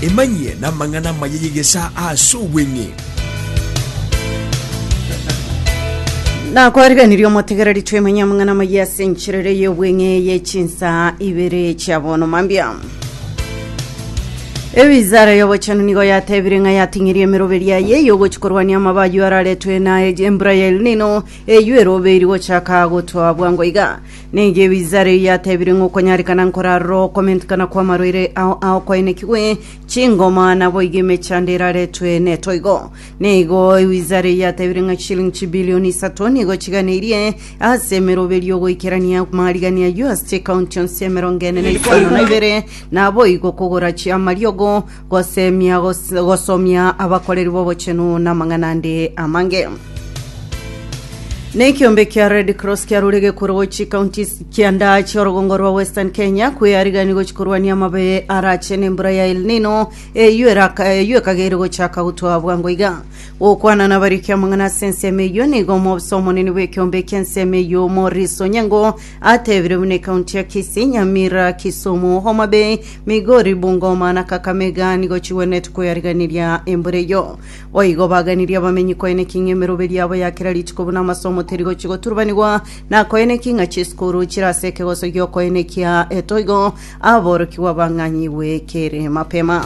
Emanyie namang'ana amaya y'egesaa ase obweng'e. nakwariganirie omotegereri twemanya amang'ana amaya ase enchera ere y'obweng'e ye chinsa ibere chia bono mambia ewizara y'obochenu nigo yatebire ng'a yating'eria emeroberi yaye y'ogochi korwania amaba ayio araretwe na embura ya elnino eyio eroberi gochaka gotwa bwango iga Neyio Ebizaara eyio yatebirie ng'a okonyarekana nkorarore okomentikana kw'amarwaire ao aokoenekigwe chingoma, naboigo emechando eraretwe netoigo. Neigo Ebizaara eyio yatebirie ng'a chishilingi chibilioni isato nigo chiganeirie ase emeroberio y'ogoikerania amarigania ayio ase chikaunti onsi emerongo ene na isano na ibere, naboigo kogora chiamariogo Gosemia, gos- gosomia abakoreri b'obochenu namang'ana ande amange. Nekiombe kia Red Cross kiarure gekuro gochi county kianda chiorogongo rwa Western Kenya kwearigani gochi korwania amabe arache nembura ya El Nino eyio eraka- eyio ekageire gochaka gotwa bwango iga. Gokwana nabariki amang'ana ase ensemo eyio nigo omobisa omonene bw'ekiombe eki'ensemo eyio Maurice Onyango Atebire buna ekaunti ya Kisii, Nyamira, Kisumu, Homa Bay, Migori, Bungoma na Kakamega nigo chigwenerete koyariganiria embura eyio. Boigo baganirie abamenyi koeneki ng'a emeroberi yabo ya kera rituko buna amasomo teri gochia goturubanigwa na koeneki ng'a chisukuru chire ase ekegoso gi'okoenekia etoigo Aborokigwa bang'anyigwe kere mapema.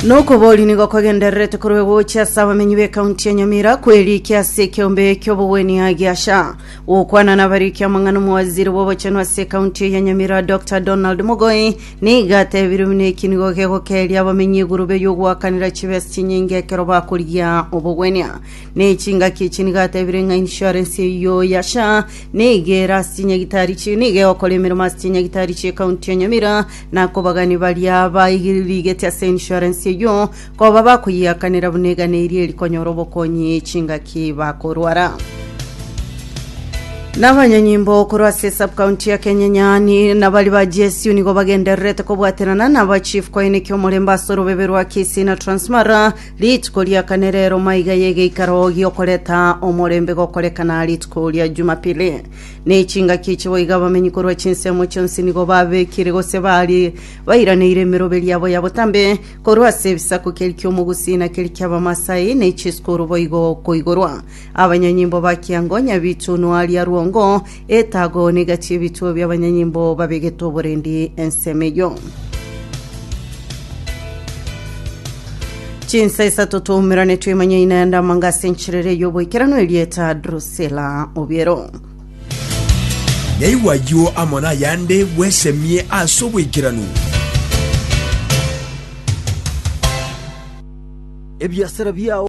Nokobori nigo kwagendererete korwa gochi ase abamenyi b'ekaunti ya Nyamira kwerikia ase ekeombe ki'obogwenia gia SHA. Gokwana nabarikia amang'ana omowaziri bw'obochenu ase ekaunti eye ya Nyamira Dr Donald Mogoi nigo atebirie buna eki nigo gegokeria abamenyi egurube y'ogoakanera chibesa chinyinge ekero bakorigia obogwenia. Ne chingaki echi nigo atebire ng'a insurance eyio ya SHA nigo ere ase chinyagitari echi nigo egokora emeremo ase chinyagitari chie county ya Nyamira na akobagani baria baigirigeti ase insurance eyio koba bakoyiakanera buna egana eria erikonyora obokonyi chingaki bakorwara. Nabanyanyimbo korwa ase subcounty ya Kenyanyani nabari ba GSU nigo bagendererete kobwaterana naba chief koeneki omorembe ase orobebe rwa Kisii na Transmara Rituko ria kane rero maiga y'egeikaro gi'okoreta omorembe gokorekana rituko ria Jumapili. Ne chingaki echi boigo abamenyi korwa chinsemo chionsi nigo babekire gose bari bairaneire emerobe riabo ya botambe korwa ase ebisaku keri ki'Omogusi na keri ki'Abamasai ne chisukuru boigo koigorwa abanyanyimbo ba kiango nyabitunwa ria rwongo Etago niga chi'ebichwa bi'abanyanyimbo babegete oborendi ensemo eyio. Chinsa isato twaumerane twemanyaine ande amanga ase encherere y'oboikeranu erieta Drusilla Obiero. Naigwa ayio amo nayande bwesemie ase oboikeranu. ebiasara biao